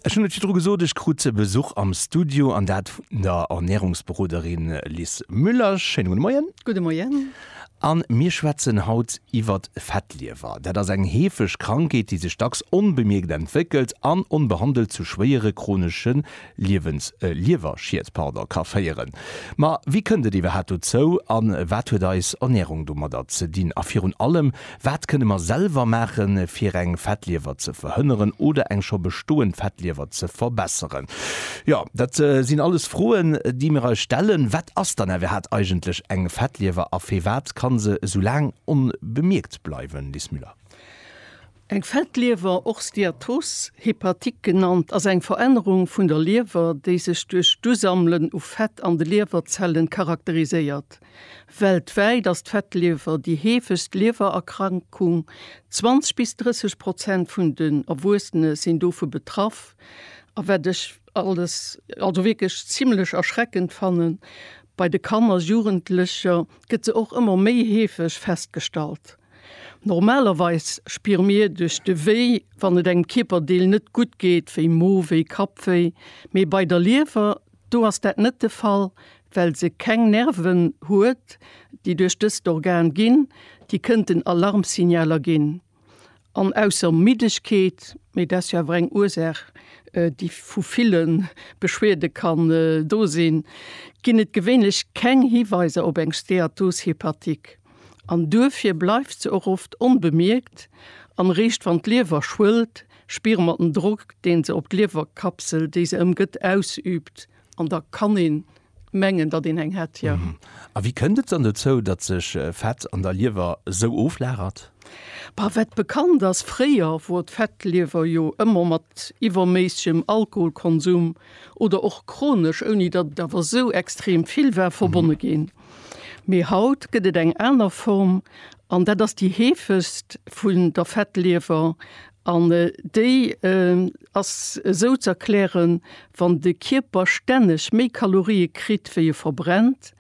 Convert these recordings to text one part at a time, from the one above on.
Ech hunn et virdru gesot, ech krut Besuch am Studio, an dat vun der Ernärungsberoderin Liz Müller. Schéine gudde Moien. Gudde Moien. A mir schwätzen haut iwwer d'Fettliewer. Dat ass eng heefeg Krankheet, déi sech dacks onbemierkt entwéckelt an onbehandelt zu schwéiere chronesche Liewens, e Liewerschied, pardon, ka féieren. Ma wéi kënnt et iwwerhat dozou an wat huet eis Ernährung domadder ze dinn? A virun allem, wat kënne mer selwer maachen, fir eng Fettliewer ze verhënneren oder eng scho bestoend Fettliewer ze verbesseren? Jo, dat sinn alles Froen, déi mir eis stellen. Wat ass dann iwwerhat eigentlech eng Fettliewer a firwat kann se esou laang onbemierkt bleiwen, Liz Müller? Eng Fettliewer, och Steatose hepatique genannt, ass eng Verännerung vun der Liewer, déi sech duerch d'Usammelen u Fett an de Liewerzellen charakteriséiert. Weltwäit ass d'Fettliewer déi heefegst Liewererkrankung, 20 bis 30 Prozent vun den Erwuessene sinn dovu betraff. A wat ech alles, also wierklech zimlech erschreckend fannen, bei de Kanner, Jugendlecher gëtt se och ëmmer méi heefeg festgestallt. Normalerweis spiere mir duerch de Wéi, wann et engem Kierperdeel net gutt geet, wéi Mowéi, Kappwéi. Mee bei der Liewer, do ass dat net de Fall, well se keng Nerven huet, déi duerch dëst Organ ginn, déi kënnten Alarmsignaler ginn. An ausser Middegkeet, mee dat ass jo awer eng Ursaach, déi vu ville Beschwierde kann do sinn, ginn et gewéinlech keng Hiweiser op eng Steatos hepatique. an duerfir bleift se och oft onbemierkt an réischt wann d'Liewer schwëllt spire mer den Drock deen se op d'Liewerkapsel déi se ëmgëtt ausüübt an da kann een mengen datt een eng hätt, jo. A wéi kënnt et dann dozou datt sech Fett an der Liewer esou oflagert? Bah, wat bekannt ass, fréier wor d'Fettliewer jo ëmmer mat iwwerméissigem Alkoholkonsum oder och chronesch, ouni datt et awer esou extrem vill war, verbonne ginn. Mee haut gëtt et eng aner Form, an dat ass déi heefegst vun der Fettliewer. An déi ass esou ze erklären, Wann de Kierper stänneg méi Kalorie kritt, wéi e verbrennt,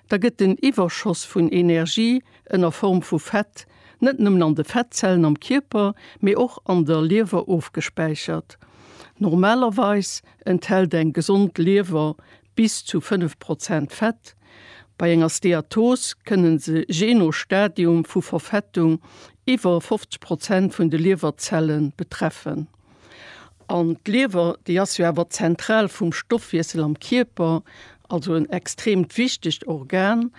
da gëtt den Iwwerschoss vun Energie ënner Form vu Fett net nëmmen an de Fettzellen am Kierper, mee och an der Liewer ofgespäichert. Normalerweis enthält eng gesond Liewer bis zu 5 Prozent Fett. Bei enger Steatos kënnen se jee no Stadium vu Verfettung iwwer 50 Prozent vun de Liewerzelle betreffen. An d'Liewer, déi ass jo awer d'Zentral vum Stoffwiessel am Kierper, also en extreemt wichtegt Organ,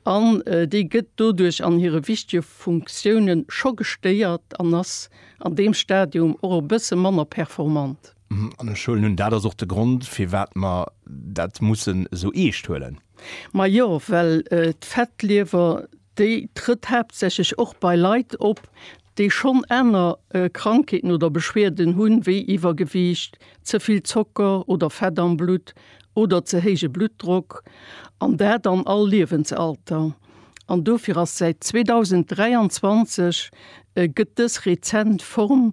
an déi gëtt doduerch an hire wichtege Funktioune scho gestéiert an ass an deem Stadium och e bësse manner performant. An ech huelen un, dat ass och de Grond, firwat mer dat mussen esou eescht huelen. Majo, well d'Fettliewer, déi trëtt haaptsächlech och bei Leit op, déi schonn aner Krankheeten oder Beschwierden hunn, wéi Iwwergewiicht, ze vill Zocker oder Fett am Blutt oder ze héije Bluttdrock, an dat an all Liewensalter. An dofir ass säit 2023, gëtt dës rezent Form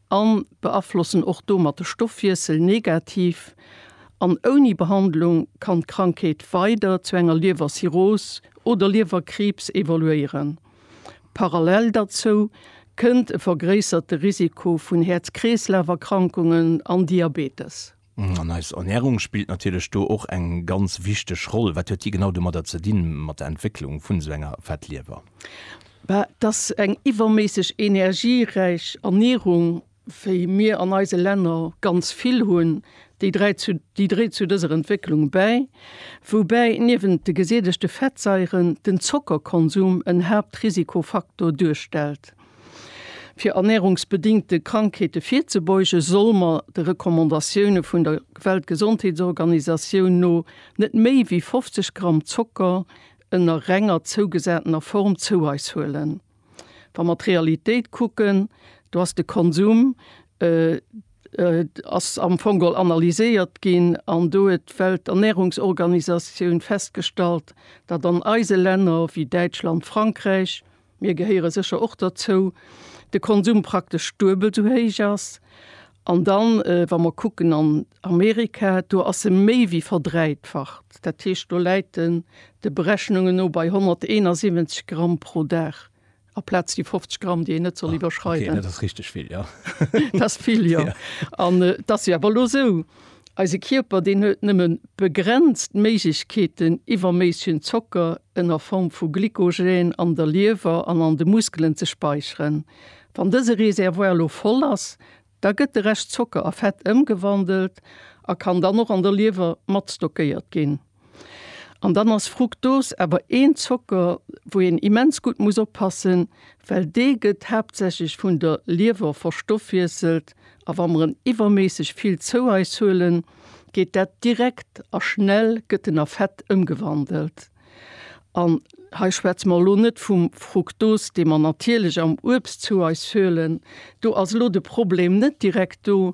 a beaflossen och domat de Stoffwiessel negativ an ouni Behandlung kann d'Krankheet weider zu enger Liewercirrhos oder Liewerkriibs evoluéieren. Parallel derzou kënnt e vergréisserte Risiko vun Häerz-Kreeslaf-Erkrankungen an Diabetes. An eis Ernährung spillt natierlech do och eng ganz wichteg Roll. Wat huet déi genau domadder ze dinn, mat der Entwécklung vun esou enger Fettliewer? Dass eng iwwerméisseg energieräich Ernährung, wéi mir an eise Länner ganz vill hunn, déi dräit zu, déi dréit zu dëser Entwécklung bäi. Woubäi niewent de gesättegte Fettsaieren den Zockerkonsum en Haaptrisikofaktor duerstellt. Fir ernärungsbedingte Krankheete virzebeugen, solle mer de Recommandatioune vun der Weltgesondheetsorganisatioun no net méi wéi 50 Gramm Zocker ënner renger zougesatener Form zou eis huelen. Wa mer d'Realitéit kucken, do ass de Konsum ass am Fong all analyséiert ginn an do huet d'Welternärungsorganisatioun festgestallt, datt an eise Länner wéi Däitschland, Frankräich, Mir gehéiere sécher och derzou, de Konsum praktesch duebel esou héich ass. An dann, wa mer kucken an Amerika, do ass e méi wéi verdräitfacht. Dat heescht, do läit en de Berechnungen no bei 171 Gramm pro Dag aplaz déi 50 Gramm, déi een net soll iwwerschreiden. Dat ass vill, jo. An et ass jo awer elo esou, Eise Kierper, deen huet nëmme begrenzt Méiglechkeeten, iwwerméissegen Zocker ënner Form vu Glykogen an der Liewer an an de Muskelen ze späicheren. Wann dëse Reservoir elo voll ass, da gëtt de Rescht Zocker a Fett ëmgewandelt a kann dann och an der Liewer mat stockéiert ginn. An dann ass Fructose awer een Zocker, wou een immens gutt muss oppassen, well dee gëtt haaptsächlech vun der Liewer verstoffwiesselt. A wa mer en iwwerméisseg vill zou eis huelen, geet dat direkt a schnell gëtt en a Fett ëmgewandelt. An hei schwätze mer elo net vum Fructose, dee mer natierlech am Uebst zou eis huelen. Do ass elo de Problem net direkt do,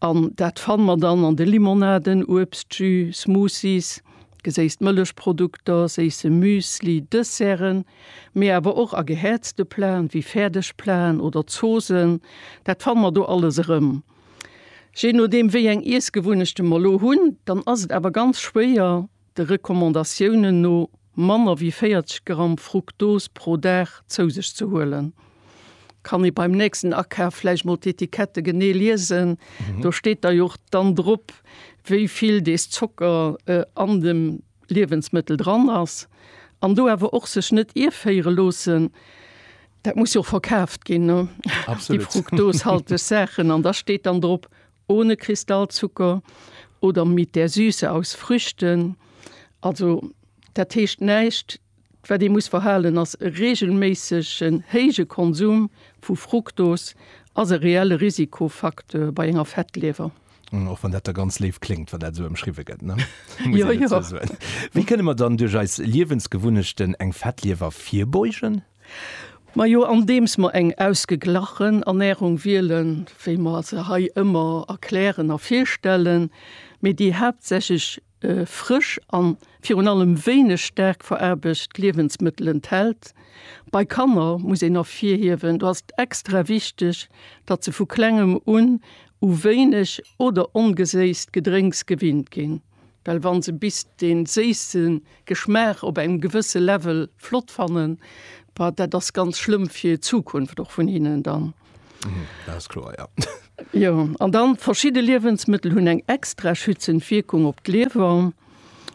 An dat fanne mer dann an de Limonaden, Uebstjus, Smoothies, geséisst Mëllechprodukter, séisse Müsli, Desserten, mee awer och a gehäerzte Platen, wéi Fäerdegplaten oder Zoosen. Dat fanne mer do alles erëm. Je nodeem, wéi eng Iessgewunnechte mer elo hunn, dann ass et awer ganz schwéier, de Recommandatiounen no manner wéi 40 Gramm Fruktos pro Dag zou sech ze huelen. Kann ee beim nächsten Akaf vläicht mol d'Etikette genee liesen, do steet da jo och dann drop, wéi vill dees Zocker an dem Liewensmëttel dran ass. An do awer och sech net ierféiere loossen, dat muss jo och verkaaft ginn, déi fruktoshalteg Saachen. An da steet dann drop, Ohne Kristallzucker oder mit der Süße aus Früchten, also dat heescht näischt, wat ee muss verhalen ass, e reegelméissegen héije Konsum vu Fruktos ass e reelle Risikofacteur bei enger Fettliewer. Och wann dat da ganz léif kléngt, wann dat esou ëmschriwwe gëtt, ne? Muss een dozou soen. Wéi kënne mer dann duerch eis Liewensgewunnechten eng Fettliewer virbeugen? Majo, andeems mer eng ausgeglachen Ernährung wielen, wéi mer se hei ëmmer erklären a virstellen, mee déi haaptsächlech frësch a virun allem wéineg staark veraarbecht Liewensmëttel enthält. Bei Kanner muss een ervirhiewen, do ass et extra wichteg, datt se vu klengem un u wéineg oder ongeséisst Gedrénks gewinnt ginn. Well wann se bis den séisse Geschmaach op engem gewësse Level flott fannen, bah dat ass ganz schlëmm fir d'Zukunft och vun hinnen dann. Dat ass kloer, jo. Jo, an dann, verschidde Liewensmëttel hunn eng extra schützend Wierkung op d'Liewer.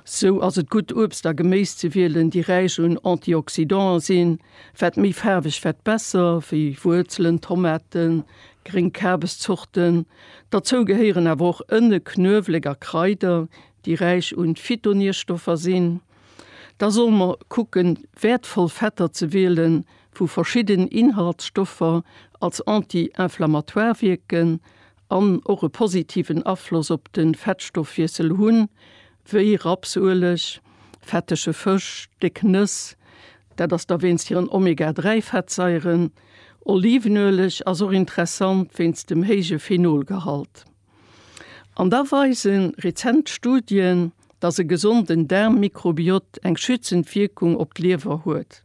Sou ass et gutt Uebst a Geméis ze wielen, déi räich un Antioxydanten sinn, wat méi faarweg wat besser, wéi Wuerzelen, Tomaten, gréng Kabeszorten. Dozou gehéieren awer och Ënne, Knuewelek a Kraider, déi räich un Phytonierstoffer sinn. Da solle mer kucken, wäertvoll Fetter ze wielen, wou verschidden Inhaltsstoffer als anti-inflammatoire wierken an och e positiven Afloss op de Fettstoffwiessel hunn, wéi Rapsueleg, fettege Fësch, déck Nëss, dat ass da wéinst hiren Omega-3-Fettsaieren, Olivenueleg ass och interessant wéinst dem héije Phenolgehalt. An da weise rezent Studien, dass e gesonden Daarmmikrobiot eng schützend Wierkung op d'Liewer huet.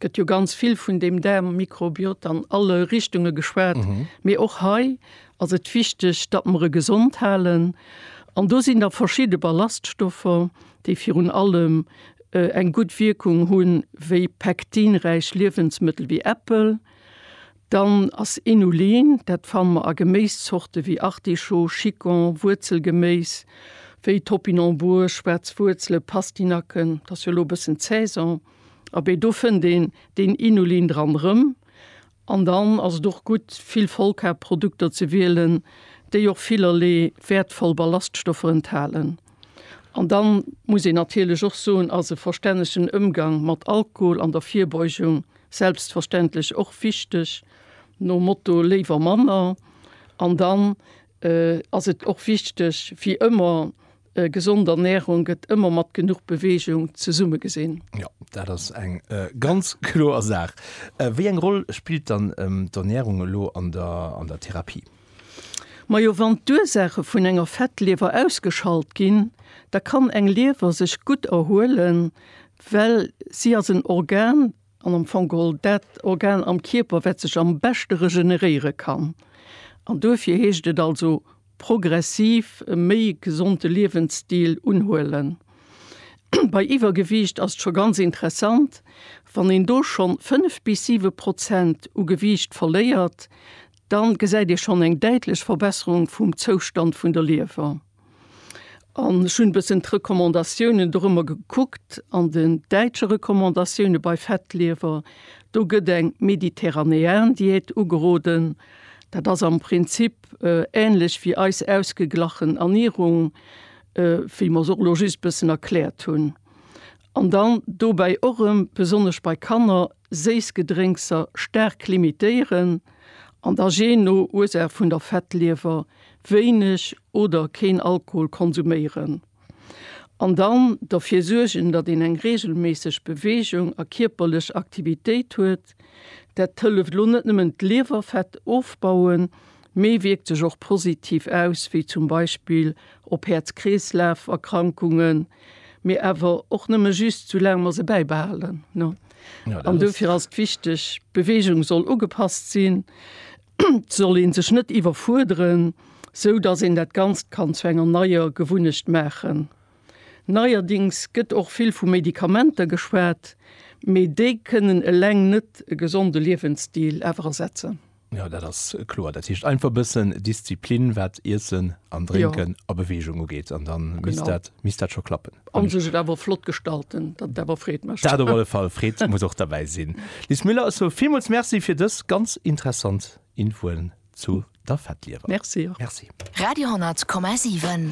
Gëtt jo ganz vill vun deem Daarmmikrobiot an alle Richtunge geschwat, mee och hei ass et wichteg, datt mer e gesond halen. An do sinn da verschidde Ballaststoffer, déi virun allem eng gutt Wierkung hu wéi pektinräich Liewensmëttel wéi Äppel, dann ass Inulin, dat fanne mer a Geméiszorte wéi Artichaut, Chicon, Wuerzelgeméis wéi Topinambur, schwaarz Wuerzele, Pastinaken, dat ass jo elo e bëssen d'Saison, abee do fënnt een deen Inulin dran erëm. An dann ass et och gutt, vill Vollkarb-Produkter ze wielen, déi och villerlee wäertvoll Ballaststoffer enthalen. An da muss een natierlech och soen, ass e verstännegen Ëmgang mat Alkohol an der Virbeugung selbstverständlech och wichteg, nom Motto léiwer manner. An dann ass et och wichteg, wéi ëmmer, Gesond Ernährung gëtt ëmmer mat genuch Beweegung zesumme gesinn. Jo, dat ass eng ganz kloer Saach. Wéi eng Roll spillt dann d'Ernährung elo an der an der Therapie? Majo, wann d'Ursaache vun enger Fettliewer ausgeschalt ginn, da kann eng Liewer sech gutt erhuelen, well si ass en Organ, An am Fong geholl dat Organ am Kierper, wat sech am beschte regeneréiere kann. An duerfir heescht et also progressiv e méi gesonde Liewensstil unhuelen. Bei Iwwergewiicht ass et scho ganz interessant, wann een do schonn fënnef bis siwe Prozent u Gewiicht verléiert, da gesäit ee schonn eng däitlech Verbesserung vum Zoustand vun der Liewer. An ech hunn e bëssen d'Recommandatiounen dorëmmer gekuckt. An den däitsche Recommandatioune bei Fettliewer, do gëtt eng Mediterranean-Diät ugeroden. Dat ass am Prinzip änlech wéi eis ausgeglachen Ernierung, wéi mer se och elo just e bëssen erkläert hunn. An dann dobäi och erëm, besonnesch bei Kanner, séiss Gedrénkser staark limitéieren. An da, jee no Ursaach vun der Fettliewer, wéineg oder keen Alkohol konsuméieren an dann derfir suergen, datt een eng reegelméisseg Beweegung a kierperlech Aktivitéit huet. Dat hëlleft elo net nëmmen d'Liewerfett ofbauen, mee wierkt sech och positiv aus, wéi zum Beispill op Häerz-Kreeslaf-Erkrankungen, mee awer och nëmme just sou laang mer se bäibehalen. An dofir ass et wichteg, d'Beweegung soll ugepasst sinn. soll een sech net iwwerfuerderen, sou dass een dat Ganzt kann zu enger neier Gewunnecht maachen. Neierdings gëtt och vill vu Medikamenter geschwat, mee déi kënnen eleng net e gesonde Liewensstil awer ersetzen. Jo, dat ass kloer. Dat heescht einfach e bëssen Disziplin, wat Iessen an Drénken a Beweegung ugeet, an da misst dat, misst dat scho klappen. An sech et awer flott gestalten, dat awer freet mech. Dat op alle Fall, freet muss och derbäi sinn. Liz Müller, ech soe villmools Merci fir dës ganz interessant Infoen zu der Fettliewer. Merci och. Merci. Radio 10,7.